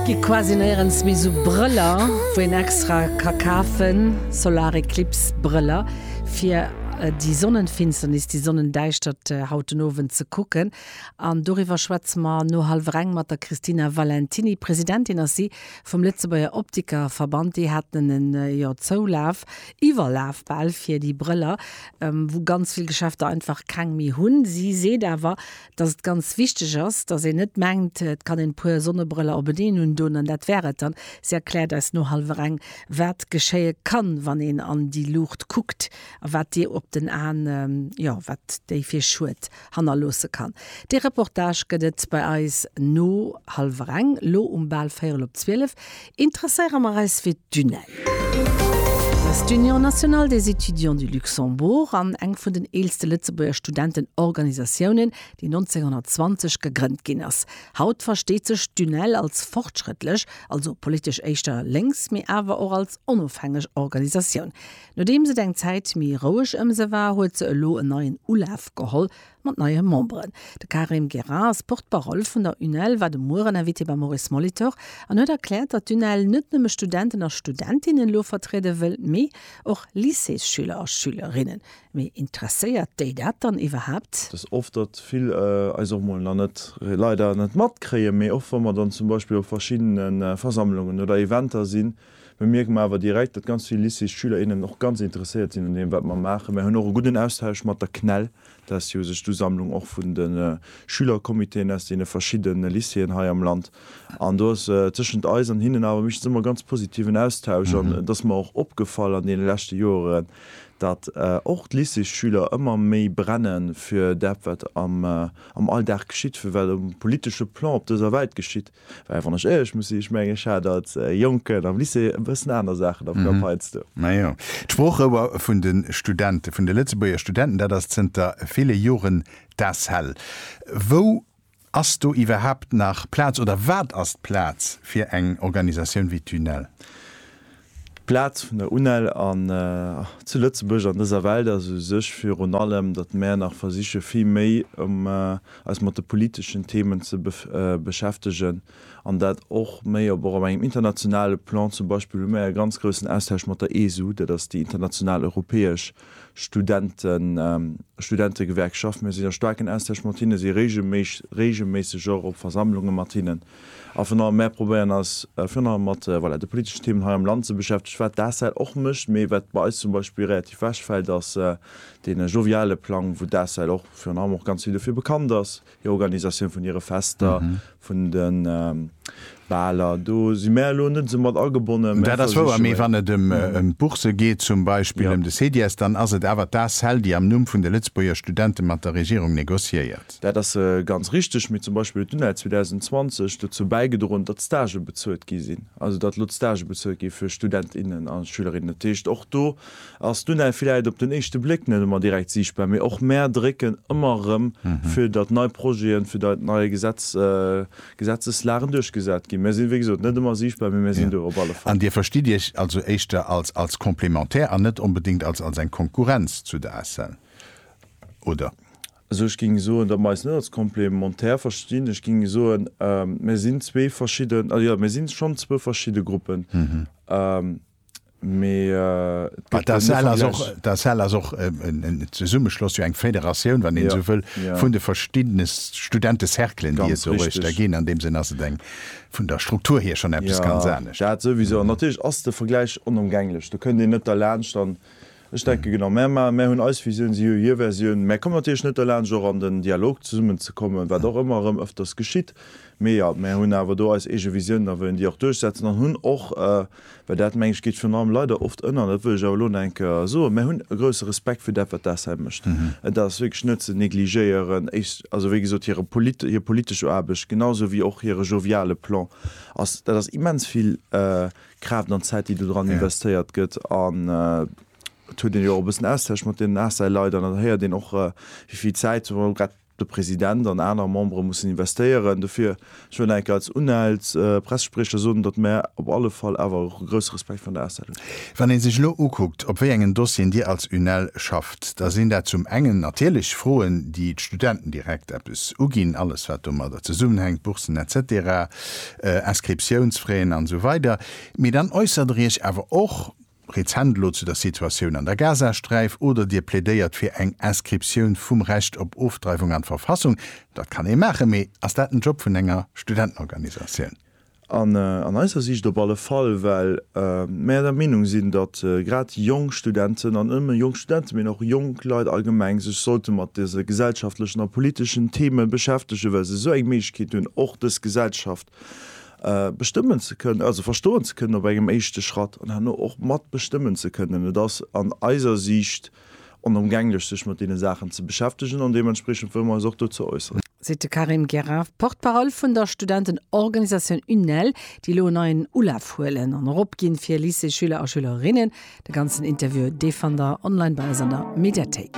Gi quasi néierens méi sou Brëller wou een extra ka kafen, Solareclips Brëller fir déi Sonnenfinsternis, déi Sonnendäischtert haut den Owend ze kucken. An doriwwer schwätze mer no hallwer eng mat der Christina Valentiny. Presidentin ass si vum Lëtzebuerger Optikerverband. Déi haten en jo Zoulaf, Iwwerlaf bal, fir déi Brëller, wou ganz vill Geschäfter einfach keng méi hunn. Si seet awer, dass et ganz wichteg ass, dass een net mengt, et kann een e puer Sonnebrëller openeen undoen an dat wär et dann. Si erkläert eis no hallwer eng, wat geschéie kann, wann een an déi Luucht kuckt a wat déi op den Aen, jo, wat déi fir Schued hannerloosse kann. Dee Reportage gëtt et bei eis no hallwer eng, lo um bal véierel op zwielef. Interesséiere mer eis fir d'UNEL. Dat ass d'Union nationale des étudiants du Luxembourg an eng vun den eelste Lëtzebuerger Studentenorganisatiounen, déi 1920 gegrënnt ginn ass. Haut versteet sech d'UNEL als fortschrëttlech, also politesch éischter lénks, mee awer och als onofhängeg Organisatioun. Nodeems et eng Zäit méi roueg ëm se war, huet se elo en neien Ulaf geholl, Mat neie Memberen. De Karim Geras, Porte-parole vun der UNEL, war de Mueren Invité beim Maurice Molitor an huet erkläert, datt d'UNEL net nëmme Studenten a Studentinnen elo vertriede wëll, mee och Lycéesschüler a schülerinnen. Mee interesséiert déi dat dann iwwerhaapt? Dass oft datt vill eis och mol nach net, leider, net matkréien, mee och wa mer dann zum Beispill op verschiddene Versammlungen oder Eventer sinn, bemierke mer awer direkt, datt ganz vill Lycéesschüler, innen och ganz interesséiert sinn un deem wat mer maachen. Mer hunn och e gudden Austausch mat der CNEL. Dest Joer sech d'Usammlung och vun de Schülercomitéen aus deene verschidde Lycéeën hei am Land. An do ass tëschent eis an hinnen awer meeschtens ëmmer ganz positiven Austausch. An et ass mer och opgefall an deene leschte Joeren, datt och d'Lycéesschüler ëmmer méi brenne fir dat, wat am Alldag geschitt, fir wat um politesche Plan op dëser Welt geschitt. Well wann ech éierlech muss sinn, ech mengen, ech hat als Jonken am Lycée e bëssen aner Saachen am Kapp heiansdo. Majo, d'Sproochrouer vun de Studenten, vun de Lëtzebuerger Studenten, dat ass zënter ville Joren d'ACEL. Wou ass do iwwerhaapt nach Plaz oder wat ass d'Plaz fir eng Organisatioun wéi d'UNEL? D'Plaz vun der UNEL an zu Lëtzebuerg an dëser Welt ass u sech virun allem, datt mär nach versiche vill méi eis mat de politeschen Themen ze beschäftegen an dat och méi op och op engem internationale Plan. Zum Beispill hu mär e ganz groussen Austausch mat der ESU, dat ass déi international europäesch Studentegewerkschaft. Mir sinn a staarken Austausch mat hinnen, si regelméisseg och op Versammlunge mat hinnen. A virun allem, mär probéieren eis virun allem mat, voilà, de politeschen Themen hei am Land ze beschäftegen, wat d'ACEL och mécht. Mee wat bei eis zum Beispill relativ wechfält, ass dee joviale Plang, wou d'ACEL och virun allem och ganz vill dofir bekannt ass, hir Organisatioun vun hire Fester, vun de Baler. Do si mär elo net esou mat agebonnen. Dat ass wouer. Mee wann et ëm d'Bourse geet zum Beispill, ëm de CEDIES, dann ass et awer d'ACEL, déi am Numm vun de Lëtzebuerger Studente mat der Regierung negociéiert. Dat ass ganz richteg, mee zum Beispill huet d'UNEL 2020 dozou bäigedroen, datt d'Stagë bezuelt gi sinn, also datt elo d'Stagë bezuelt gi fir Student, innen a Schülerinnen. Dat heescht, och do ass d'UNEL villäit op den éischte Bléck net ëmmer direkt siichtbar, mee och mär drécken ëmmer erëm, fir datt nei Projeten, fir datt nei Gesetz, Gesetzeslagen duerchgesat ginn. Mär sinn, wéi gesot, net ëmmer siichtbar, mee mär sinn do op alle Fall. An Dir verstitt Iech also éischter als, als Complémentaire an net onbedéngt als, als eng Konkurrenz zu der ACEL, oder? Also ech géing soen, datt mer eis net als komplementär verstinn. Ech géing soen, mir sinn zwee verschidden, also jo, mir si schonn zwou verschidde Gruppen, mee et gëtt keen Vergläich. D'ACEL ass och en Zesummeschloss, jo eng Federatioun, wann een esou wëll, vun de verschiddene Studentecerclen, déi et doruechter ginn. Ganz richteg. An deem Sënn ass et eng, vun der Struktur hier, schonn eppes ganz anescht. Jo, dat souwisou. An natierlech ass de Vergläich onëmgänglech. Do kënnt een net derlaanscht. An Ech denke genau, mär ma, mär hunn eis Visioun, si hu hir Versioun. Mär kommen natierlech net derlaanscht och an den Dialog zesummen ze kommen, wat och ëmmer erëm ëfters geschitt. Mee jo, mär hunn awer do eis eege Visiounen a wëllen déi och duerchsetzen an hunn och, well dat meng ech geet virun allem leider oft ënner, dat wëll ech awer elo nach eng Kéier soen, mär hunn e grousse Respekt fir dat wat d'ACEM mécht. Et ass wierklech net ze negligéieren. Ech, also wéi gesot, hire polit, hir politesch Aarbecht, genau esou wéi och hire joviale Plan ass, dat ass immens vill, Kraaft an Zäit déi do dran investéiert gëtt an et huet een jo och e bëssen Austausch mat deenen ACEL-Leit an et héiert een och wéi vill Zäit zum Beispill grad de President an aner Membere mussen investéieren dofir. Ech wëll enk als UNEL's Pressespriecher soen, datt mär op alle Fall awer och e grousse Respekt vun der ACEL hunn. Wann ee sech elo ukuckt op wéi engen Dossieren Dir als UNEL schafft, da sinn dat zum engen natierlech Froen déi d'Studenten direkt eppes uginn, alles wat domadder zesummenhänkt, Boursen etc. Inscriptiounsfraien an esou weider Mee dann äussert der Iech awer och rezent elo zu der Situatioun an der Gazasträif oder Dir plädéiert fir eng Inscriptioun vum Recht op Ofdreiwung an d'Verfassung. Dat kann ee maachen, mee ass dat den Job vun enger Studentenorganisatioun? An eiser Siicht op alle Fall, well mäer der Meenung sinn, datt grad jonk Studenten, an net nëmme jonk Studenten, mee och jonk Leit allgemeng, sech sollte mat dëse gesellschaftlechen a politeschen Theme beschäftegen, well se esou eng Kéint hunn, och dës Gesellschaft bestëmmen ze kënnen, also verstoen ze kënnen op engem éischte Schratt, an herno och matbestëmmen ze kënnen. Et ass an eiser Siicht onëmgänglech, sech mat deene Saachen ze beschäftegen, an deementspriechend wëlle mer eis och dozou äusseren. Seet de Karim Gerard, Porte-parole vun der Studentenorganisatioun UNEL, déi elo en neien Ulaf huelen an eropginn, fir Lycéesschüler a schülerinnen. De ganzen Interview dee fannt der online bei eis an der Mediathéik.